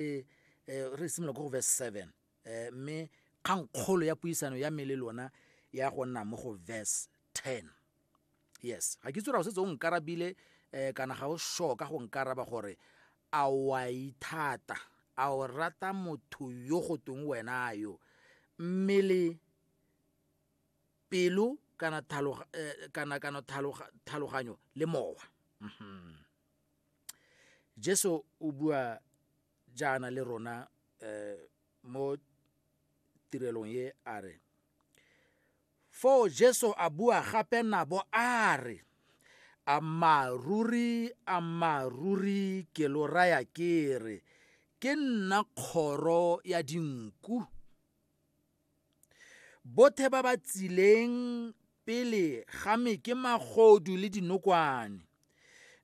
e re simolola ko go verse seven um mme kgang kgolo ya puisano ya me le lona ya go nna mo go verse ten yes ga ke tsora go setse o nkarabile um kana ga o sure ka go nkaraba gore a wa ithata a o rata motho yo go tong wena yo mmele pelo kana eh, tlhaloganyo le mowa mm-hmm. jesu o bua jaana le rona um mo tirelong ye a re foo jesu a bua gape nabo a re ammaaruri ammaaruri ke lo raya ke re ke nna kgoro ya dinku Bothe ba ba tsileng pele ga me ke magodu le dinokwane,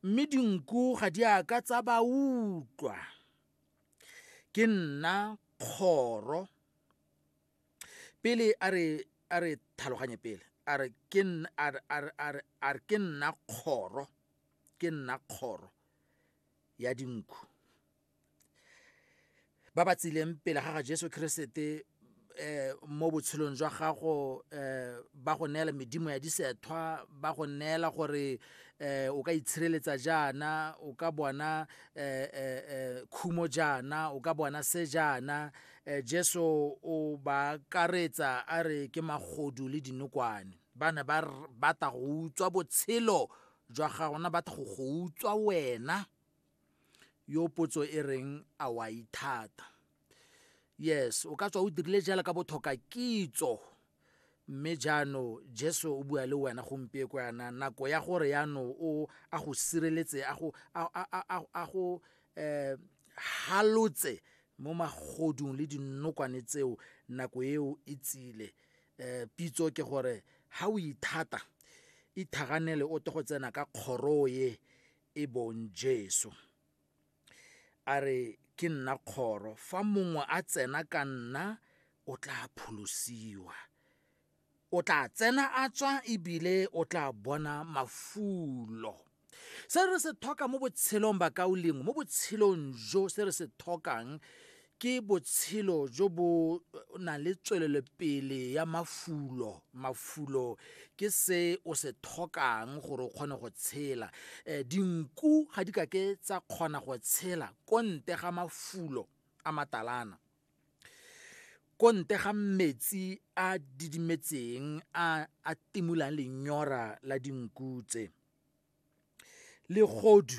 mme dinku ga di a ka tsa ba utlwa. Ke nna kgoro pele a re a re tlhaloganye pele a re ke nna a re a re a re a re ke nna kgoro ke nna kgoro ya dinku ba ba tsileng pele ga ga jesu keresete eh mo botshelong jwa gago eh ba go neela medimo ya disethwa ba go neela gore eh o ka itshireletsa jaana o ka bona eh eh, eh khumo jaana o ka bona se jaana eh jesu o ba karetsa a re ke magodu le dinokwane ba ne ba batla go utswa botshelo jwa gago na batla go go utswa wena yo potso e reng a wa ithata yes o ka tswa o dirile jala ka bothoka kitso mme jaano jesu o bua le wena gompie ko yana nako ya gore yano o a go sireletse a go a go um halotse mo magodung le dinokwane tseo nako eo e tsile um pitso ke gore ha o ithata ithaganele o te go tsena ka kgoro ye e bong Jesu. A re ke nna kgoro, fa mongwe a tsena ka nna o tla pholosiwa. O tla tsena a tswa ebile o tla bona mafulo. Se re se tlhoka mo botshelong ba kaolengwe, mo botshelong jo se re se tlhokang ke botshelo jo bo na le tswelelopele ya mafulo mafulo ke se o se tlhokang gore o kgone go tshela um dinku ga di kake tsa kgona go tshela ko nte ga mafulo a matalana ko nte ga metsi a didimetseng a a timolang lenyora la dinku tse legodu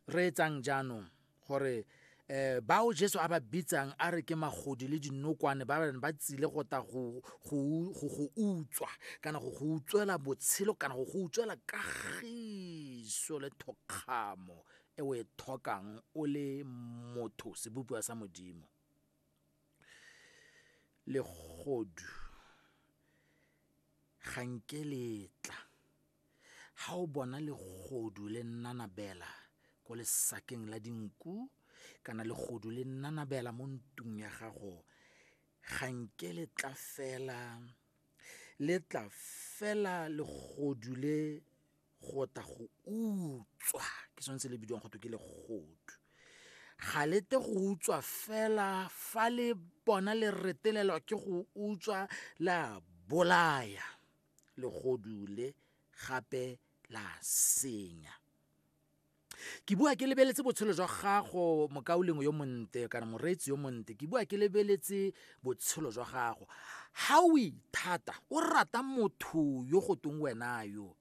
re etsang jaanong gore eh bao Jesu a ba bitsang a re ke magodi le dinokwane ba ba tsile go ta go go utswa kana go go utswela botshelo kana go go utswela kagiso le thokgamo e o e thokang o le motho sebopiwa sa modimo legodu ga nke letla Ga o bona legodu le nanabela ko lesakeng la dinku kana legodu le nanabela mo ntung ya gago, ga nke le tla fela, le tla fela legodu le go tla go utswa, ke sone se le bidiwang go twe ke legodu. Ga le tle go utswa fela fa le bona le retelelwa ke go utswa le a bolaya. legodu le gape la senya ke bua ke lebeletse botshelo jwa gago mokaulengwe yo monte kana moreetsi yo monte ke bua ke lebeletse botshelo jwa gago ga o ithata o rata motho yo go tong wena yo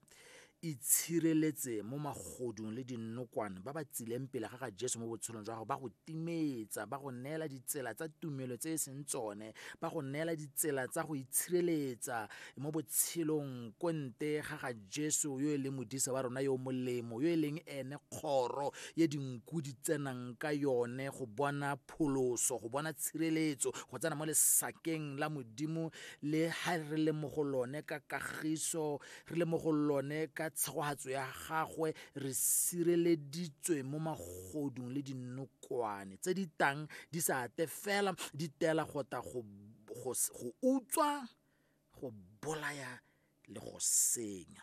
Itshireletse mo magodung le dinokwane ba ba tsileng pele ga ga Jesu mo botshelong jwa gago, ba go timetsa, ba go neela ditsela tsa tumelo tse e seng tsone, ba go neela ditsela tsa go itshireletsa mo botshelong ko nte ga ga Jesu yo e leng modisa wa rona yo molemo, yo e leng ene kgoro ye dinku di tsenang ka yone go bona pholoso, go bona tshireletso, go tsena mo lesakeng la Modimo le ha re le mo go lone ka kagiso re le mo go lone ka tshegogatso ya gagwe re sireleditswe mo magodung le dinokwane tse di tang di sa ate fela di tela go ta go utswa go bolaya le go senya